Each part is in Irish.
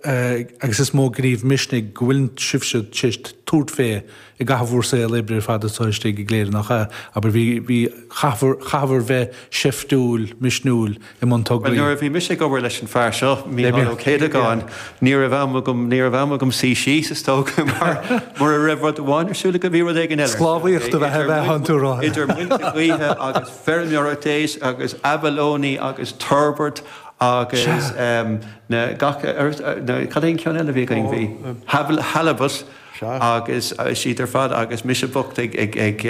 agus is mó gníomh misnigh go bhfuil sibhse tar éis tabhairt fé i gcaitheamh bhur saol oibre ar fad anseo istigh i gCléire nach ea? Abair, bhí, bhí, chaitheabhair, chaitheabhair bheith seiftiúil, misniúil i mbun Well, tograí. nuair a bhí mise ag obair leis an fear seo, Beidh Mícheál Ó mé, yeah. Céadagáin, ní raibh am agam, ní raibh am agam suí síos, is dócha, mar, mura raibh rud amháin ar siúl agam, bhí rud éigin eile ar siúl, Sclábhaíocht a bheith, a idir bheith muin, ann tú a rá. idir muilte gaoithe agus feirmeoireacht a's, agus abalone agus turbot Sea. agus, em, na gach uile, na cad é an ceann eile a bhí againn bhí Halibut agus is iad ar fad agus mise bocht ag ag ag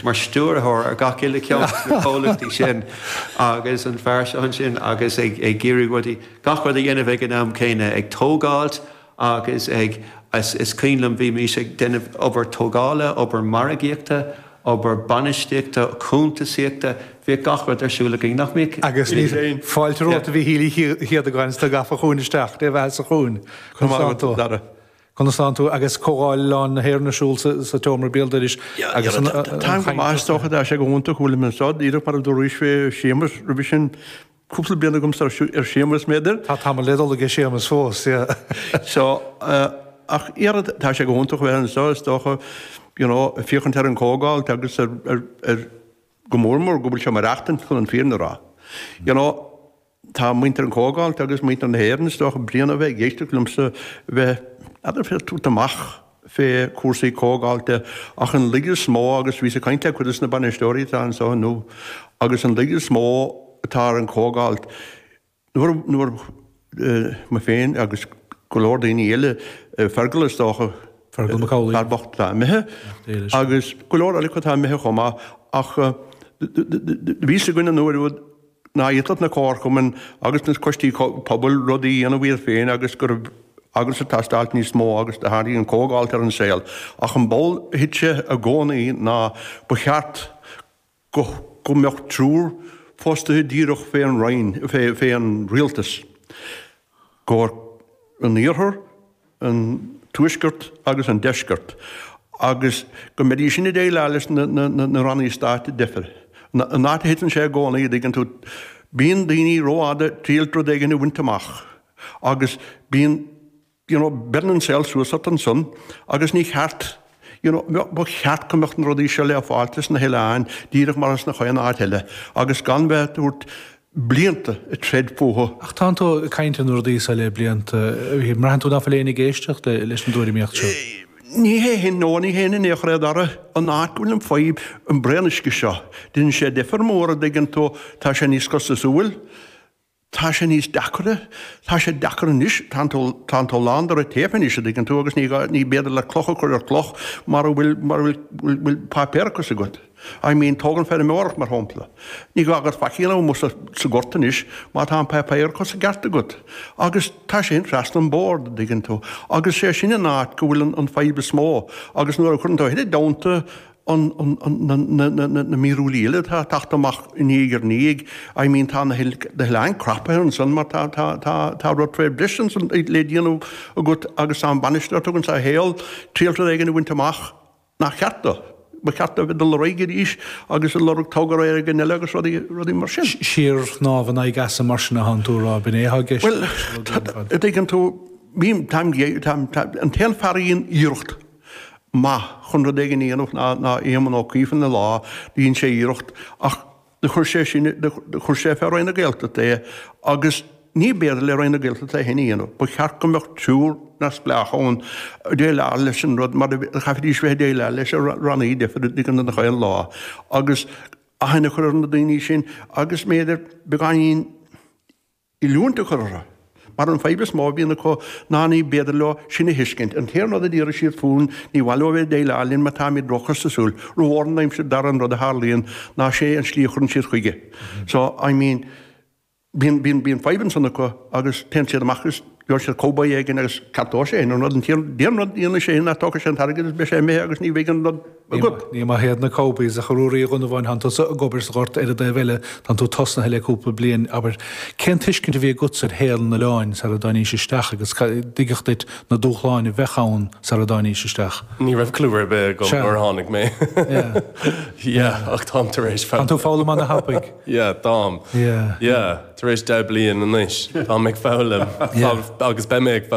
mar stiúrthóir ar gach uile ceann de na comhlachtaí sin agus an fear seo ansin agus ag ag iarraidh rudaí gach rud a dhéanamh ag an am céanna ag tógáilt agus ag is is cuimhin liom bhí mise ag déanamh obair tógála obair margaíochta obair bainistíochta, cúntasaíochta, bhíodh gach rud ar siúl againn, nach mbíodh? Agus fáilte romhat a Mhíchíl Uí Chéadagáin is tú gafa chugainn isteach, Dé bheathasa chugainn. Conas tánn tú agus Comhdháil Oileáin na hÉireann ar siúl sa tSeomra Béaldoiris agus an chaint? Táim go maith, is dócha go, tá sé go hiontach go bhfuilim anseo díreach mar a dúraís fé Séamus roimhe sin. cúpla bliain agamsa, ar Séamus, m'fhéidir. Tá tamall le dul aige Séamus fós, yeah. So, ach ara, tá sé go hiontach a bheith anseo, is dócha, you know, ag féachaint ar an gcomhdháil agus ar, go mór mór, go bhfuil sé ag maireachtaint chun an fírinne a rá. You know, tá muintir an chomhdháilt agus muintir na hÉireann, is dócha, bréan de bheith ag éisteacht liomsa bheith, b'fhéidir, ag tabhairt amach, fé chúrsaí comhdháilte, ach an laige is mó, agus bhíos ag caint le cuid de sna bainisteoirí atá anso inniu, agus an laige is mó atá ar an gcomhdháilt, nuair, nuair, mé féin agus go leor daoine eile, Fergal is dócha, Fergal Mac Amhlaoibh, fear bocht atá imithe, agus go leor eile atá imithe chomh maith, ach bhí a fhios againn an uair úd, ná féadfadh na comharchumainn agus na coistí pobail rudaí a dhéanamh iad féin agus go raibh ag teastáilt níos mó agus do tháinig an comhdháilt ar an saol. Ach an ball a thit sé i gcónaí ná ba cheart go go mbeadh triúr fostaithe díreach fé an Roinn, fé an Rialtas. gcomhair an iarthar, an tuaiscirt agus an deiscirt, agus go mbeidís sin ag déileáil leis na rannaí stáit difriúla. An áit a thiteann sé i gcónaí, an dtuigeann tú, bíonn daoine rófhada ag triailt rud éigin a bhaint amach agus bíonn, you know, beireann an saol suas ort ansan agus ní cheart, you know, ba cheart go mbeadh na rudaí seo le fáilt sna hoileáin díreach mar atá is ins chaon áit eile agus gan bheith ag tabhairt, blianta ag troid fúthu. Ach tá tú ag caint ar na rudaí seo le blianta. Mbraitheann tú nach bhfuil éinne ag éisteacht leis an dtuairimíocht seo? Ní hé shin, no, ní hé shin, a Dara, an áit go bhfuil an fadhb, an braon uisce seo. Déanann sé difear mór, an dtuigeann tú, tá sé níos costasúil, tá sé níos deacra, tá sé deacair anois, tá tú, tá tú lán de red-tape anois, an dtuigeann tú, agus ní, ní féidir leat cloch a chur ar chloch mura bhfuil, mura bhfuil, bhfuil, bhfuil páipéarachas agat. I mean, tóg an feirmeoireacht mar shampla. Ní gá agat faic a dhéanamh sa gort anois má tá an páipéarachas i gceart agat. Agus tá sé sin trasna an bord, an dtuigeann tú, agus sé sin an áit go bhfuil an fadhb is mó. Agus nuair a chuireann tú a thuilleadh damanta na mírialacha eile atá ag teacht amach diaidh ar ndiaidh, I mean tá na hoileáin crapaithe ansan mar tá rud fé leith ansan le déanamh agat agus tá an bainisteoir, tugann sé a shaol, triail rud éigin a bhaint amach. nach cheart dó. Ba cheart dó a bheith ag dul ar aghaidh arís agus ag lorg togra éigin eile agus rudaí, rudaí mar sin. Síorshnámh in aghaidh easa mar sin atánn tú a rá, b'in é atá i gceist? Bhuel, an dtuigeann tú, bím, táim, táim, táim, an t-aon fear a dhein iarracht maith chun rud éigin a dhéanamh ná, ná Éamonn Ó Cuív ina lá, dhein sé iarracht ach, Chuir sé sin, chuir sé faoi Roinn na Gaeltachta é agus níorbh fhéidir le Roinn na Gaeltachta é féin a dhéanamh. Ba cheart go mbeadh triúr neamhspleách ann ag déileáil leis an rud mar chaithfidís bheith ag déileáil leis na rannaí difriúla gach aon lá agus aithne a chur ar na daoine sin agus b'fhéidir beagáinín oiliúint a chur orthu. Mar an fadhb is mó a bhíonn acu ná ní féidir leo sin a thuiscint. An t-aon rud a d'iarrfaidh siad fúinn, ní maith leo a bheith ag déileáil linn mar táimid róchostasúil, rómhór, ní muidne, Dara, an rud a tharlaíonn ná sé an slí a chuireann siad chuige. So, I mean, bíonn, bíonn, bíonn fadhb ansan acu agus téann siad amach agus gheobhaidh siad cowboy éigin agus ceapfaidh sé sin an rud. An t-aon, an t-aon rud a dhéanfaidh sé sin ná tógfaidh sé an t-airgead agus beidh sé imithe agus ní bheidh an rud, agat. Ní maith iad na cowboys, ach a Ruairí Uí Dhonnabháin, tánn tusa ag obair sa ghort ar an dtaobh eile, tánn tú tosnaithe le cúpla bliain, abair, cén tuiscint a bhí agatsa ar shaol an oileáin sara dtáinís isteach agus cad a tuigeadh duit na dúshláin a bheadh ann sara dtáinís isteach? Ní raibh clú ar bith agam nuair a tháinig mé. Yeah, yeah, ach táim tar éis foghlaim. Tá tú ag foghlaim ana thapaidh. Yeah, táim. Yeah. Yeah, tar éis deich bliain anois, táim ag foghlaim agus beidh mé ag foghlaim.